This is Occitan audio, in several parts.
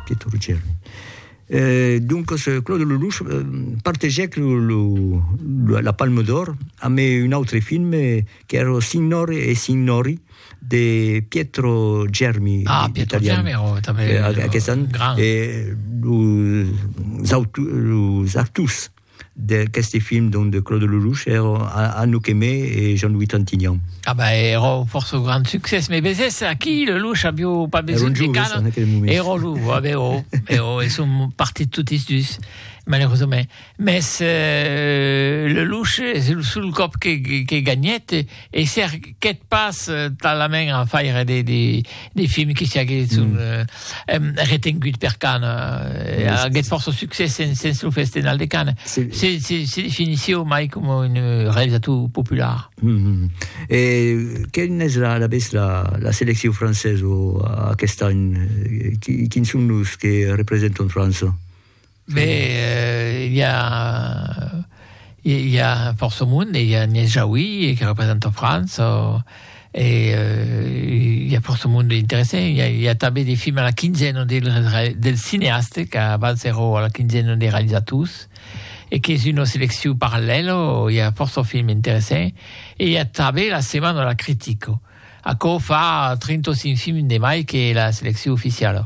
Que tu rugèr. Euh, doncas, Claude Lelouch partegèc lo, lo, la, la Palme d'Or amb un autre film qu'èra lo Signore e Signori de Pietro Germi, Ah, Pietro italian. Germi, oh, també, Eh, a- oh, Aquest an, gran. eh, los, autu, los actors d'aqueste film donc de Claude Lelouch er Anouk Aimée e Jean-Louis Trintignant. Ah ben ero fòrça grand succès, me vesés aquí Lelouch avió pas besonh de canon, ero jo, ah ben jo, ben jo, e son partit totis dus malerosament, mès Lelouch es lo sol còp que gagnèt, E cerquèt pas talament a faire des, des, des films qui s'aguesson mm. euh, euh, retengut per Cannes. Euh, aguèt força succès sens, sens lo Festenal de Cannes. Se, se, se, se definissieu mai com un euh, realizator popular. Mm -hmm. E quin es la, la, la, la selecció francesa aquest any? Quins son los que representan França? Mais i a i a fòrça monde, i a Agnès Jaoui que representa França e i a fòrça monde interessant, i a i a tanben de films a la quinzena de de cineastes qu'abans èra a la quinzena de realizators e qu'es una seleccion parallèla, i a fòrça films interessants e i a tanben la setmana de la critica. Aquò fa 35 films de mai que la seleccion oficiala.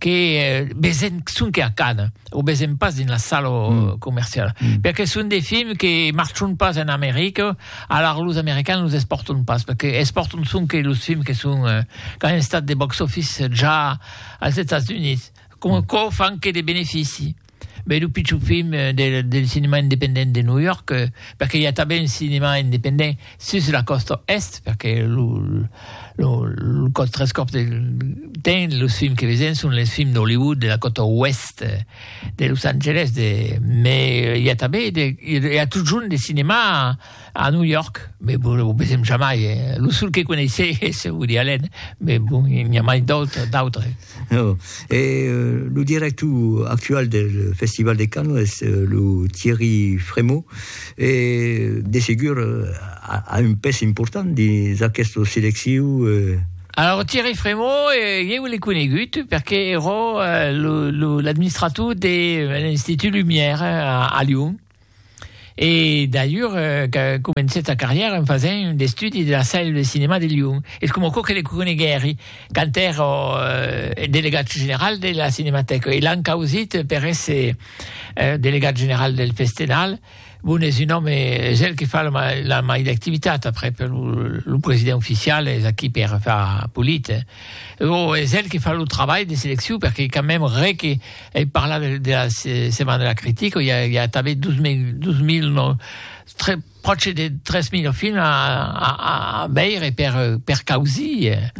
que vesen sonque a Cannes, o vesen pas dins la sala comerciala, perque son de films que marchon pas en America, alara los Americans los espòrton pas, perque espòrton sonque los films que son qu'an estat de box-office ja als Estats Units, coma quò fan que de benefici. Beh, lo pichon film del, del cinema independent de New York, perque i a tanben un cinema independent sus la còsta est, perque lo, lo, lo còt tres còps del temps, los films que vesen son les films d'Hollywood, de la còta oest de Los Angeles, de, mais i a tanben, de, i a totjorn de cinema, A New York, mais bon, lo vesèm jamai, eh? Lo sol que coneissè es Woody Allen, mais bon, i n'i a mai d'autres, d'autres. No, e lo director actual del Festival de Cannes es lo Thierry Frémaux, e de segur a un pes important dins aquesta selecciu, eh? Alors, Thierry Frémaux, eh, ieu l'ai conegut perque ero lo, lo, l'administrator de l'Institut Lumière a Lyon. E d'allur que comencèt sa carrièra en fasent un estudi de la Salle de Cinéma de Lyon. Es coma aquò que le coneguèri quand èra delegat general de la Cinematèca e l'an causit per èsser delegat general del Festenal. Bon, es un òme, es el que fa la mai d'activitat aprèp lo president oficial es aquí per far polit. Bon, es el que fa lo trabalh de seleccion perque quand mèm re que Ei parlat de, de la Setmana de la Critica, i a, i a tanben 2000, 2000 no, tre, pròche de 3.000 films a, a, a veire per, per causir, eh,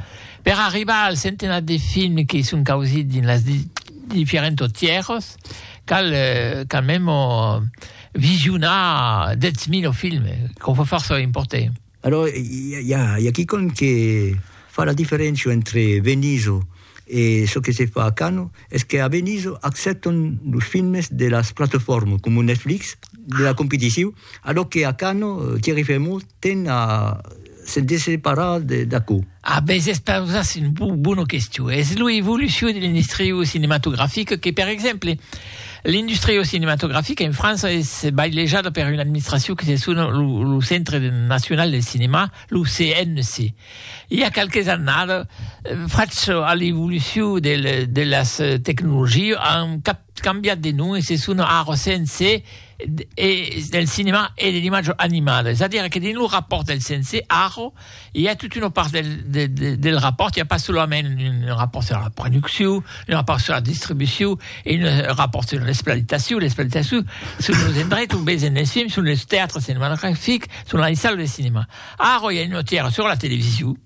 per arribar al centenat de films que son causits dins las di, diferents tierras, cal, eh, cal memo visionar 10.000 films, quò fò fòrça important. Alò, i a i a quicòm que fa la diferéncia entre Venizo e çò que se fa a Cano, es que a Venizo accèptan los filmes de las platefòrmas coma Netflix, de la competicion, alò que a Cano Thierry Frémaux ten a se desseparar d'aquò. A bes es pausas un bona question. Es lo evolucion de l'industria cinematografica que, per exemple, l'industria cinematografica en França es bailejada per una administracion que se sona lo Centre National del Cinéma, lo CNC. I a qualques annadas, fach a l'evolucion de las tecnologias, an cap cambiat de nom e se sona ara CNC e del cinema e de l'imatge animada es a dire que dins lo rapòrt del CNC ara i a tota una part del del rapòrt i a pas solament un rapòrt sur la produccion un rapòrt sur la distribucion e un rapòrt sur l'exploitacion l'exploitacion son los endrechs ont vesen es films son los teatres cinematografics son las salles de cinema ara i a una tièra sur la television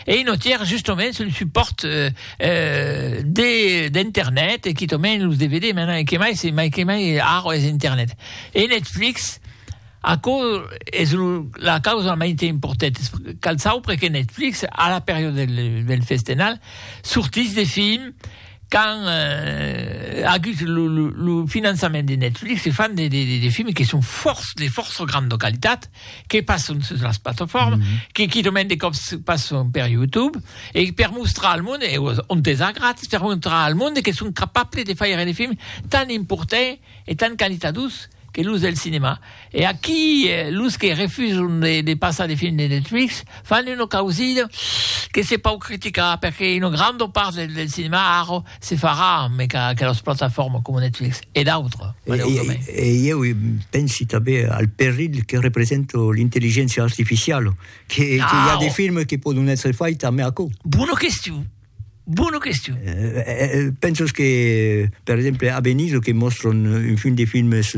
Ei notièr justoments un supòrt d'internet e quitament los DVD, mai que mai se mai que mai ara es internet e Netflix aquò es la causa mai te importèt cal saupre que Netflix a la periòda del festenal sortís de films qu'an agut lo finançament de Netflix e fan de films que son fòrça de fòrça granda qualitat que passon sus las plataformas, mm -hmm. que quitament de còps passon per YouTube, e per mostrar al monde, e on t'es a gratis, per mostrar al monde que son capable de faire de films tan importants e tan qualitadus que los del cinema. E aquí, eh, los que refusan de, de passar de films de Netflix fan una causida que se pau criticar, perque una granda part del, del cinema, ara, Se farà, mai qu'a aquelas plataformas coma Netflix e d'autres, maleudament. E, e, e ieu pensi tanben al perilh que representa l'intelligéncia artificiala, que, ah, que i a de films que pòdon èsser faits tanben aquò. Bona question. Bona question. Eh, eh, eh pensas que, per exemple, a Venise, que mòstran un fin de films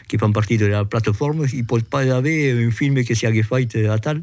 que fan partir de la plataforma, i pòt pas aver un film que siague fait atal?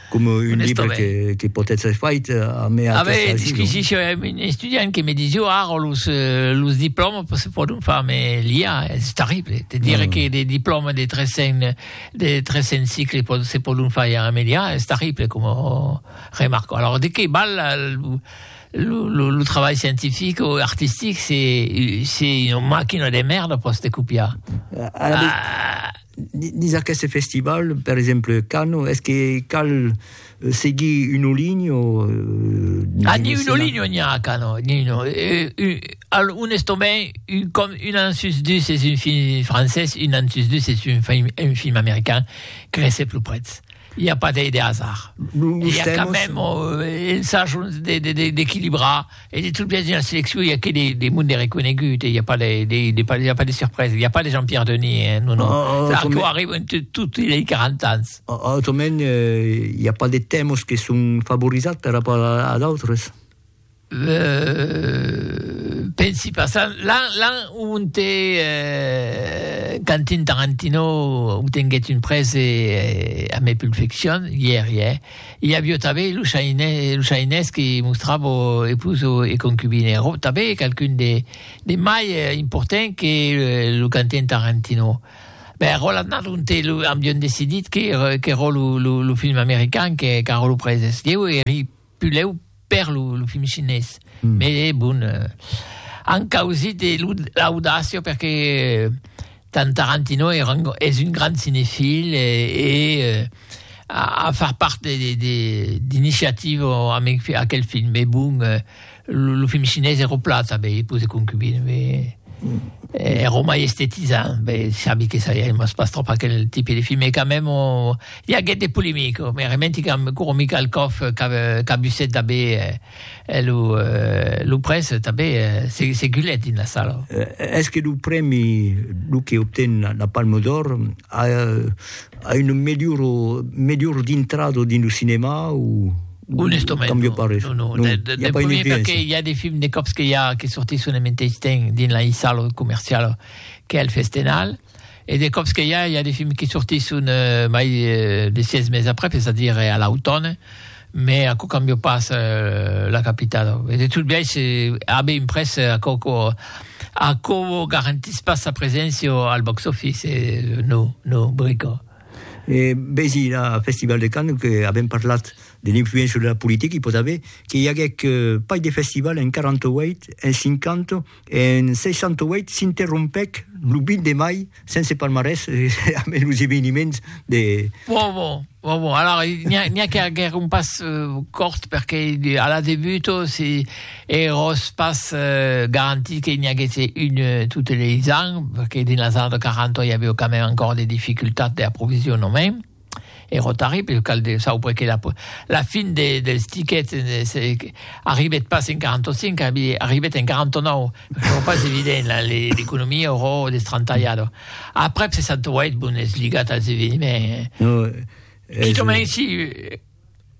coma un libre que, que pòt èstre fait a mea ah ben, disquisició, eh, un estudiant que me disiu ara los, eh, los diplòmas se pòdon far me l'IA, és terrible, te dire mm. que de diplòmas de 300, de 300 cicles pot, se pòdon far ja amb l'IA, és terrible com remarco. Alors, de que val la, lo, lo, lo, lo travail scientifique ou artistique, c'est, c'est une machine de merde pour se copiar. Ah, ah, Dins aqueste festival, per exemple, Cano, es que cal euh, seguir un oligno? Euh, ah, ni un oligno ni a Cano, ni no. Euh, euh, al, un estomai, un, com, un ansus dus es un film francès, un ansus dus es un film, un film americain, crece plus prets. Il n'y a pas de, de hasard. Nous, nous Il y a quand même euh, un sage d'équilibrer E de tot biais, dina seleccion, i a que de monde reconegut, i a pas de surpresa, i a pas de Jean-Pierre Denis, non, non. Clar, que arriba en tot, i a 40 ans. Autrament, i a pas de tèmas que son favorizats per rapport a d'autres? Pensi pas. L'an onte Quentin Tarantino obtenguèt un prèse a mai Pulp Fiction, ièri, eh? I avió tabé los ainès que mostravo epus o e concubine, ro tabé qualqu'un de de mai important que lo canten Tarantino. Ben, ro l'annat lonte lo ambion decidit que que ro lo lo lo film american que qu'arro lo preses. Ieu eri puleu per lo, lo film chinés. Mm. Mais eh, bon, eh, an causit eh, l'audacia perque eh, Tarantino era un, és un grand cinefil e, eh, e eh, a, a far part d'iniciativa amb aquel film. Mais bon, eh, lo, lo film chinés era plat, sabe, i pose concubine, mais... Eh, era mai estetizant, bé, sabi que ça, il pas trop aquel type de film, mais quand même, on, I aguèt de polemica, me rementi qu'amb Guru Mikhalkov qu'abusèt tanbé e lo près tanbé se gulèt dins la sala. Es que lo prèmi, lo que obten la Palme d'Or, a una melhora dintrada dins lo cinèma o? Onestament non, non, non. Del prumèr perqué i a de films de còps que i a que sortisson en meteis temps dins la sala comerciala qu'es el Festenal. e de còps que i a, i a de films que sortisson mai de sièis mes après, es a dire a l'autòne, me aquò cambia pas la capitada. E de tot biais, a be imprès, aquò aquò garantís pas sa preséncia al box office, no, no, brica. E besi la Festival de Cannes, que avèm parlat de l'influéncia de la politica, i pòt aver que i aguèc pas de festival en 48, en 50, En 68 s'interrompèc lo 20 de mai sense palmarès amé los eveniments de. Bon, bon, bon, bon. Alors, n'hi a, a qu'à guère un pas euh, cort, perque a la debut, oh, si eros pas euh, garantit que n'hi haguesse une euh, toutes les ans, perque dins las années de 40 il y avait quand même encore des difficultats d'approvisionnement. E rotari pel cal de saubre que la fin dels tiquets arribet pas en 45, arribet en 49, çò pas evident, l'economia aurò destrantalhada. Aprèp 68, bon, es ligat als eveniments. Quitament si...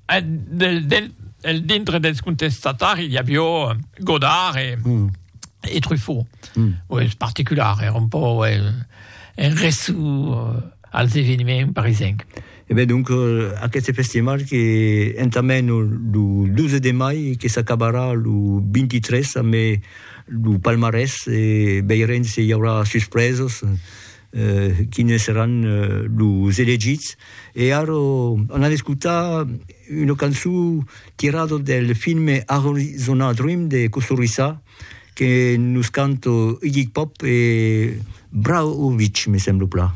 Del dintre dels contestatari i avió Godard e e Truffaut. Mm. Oi, es particular, era un pò oi, en reçu als eveniments parisenc. E ben donc aqueste festival que entament lo 12 de mai que s'acabarà lo 23 amé lo palmarès e veirem se i aurà suspresos. quines seràn los elegits, e ara an a escotar una cançon tirada del filme Arizona Dream de Kusturica que nos canta Iggy Pop e Brahovic, me sembla plan.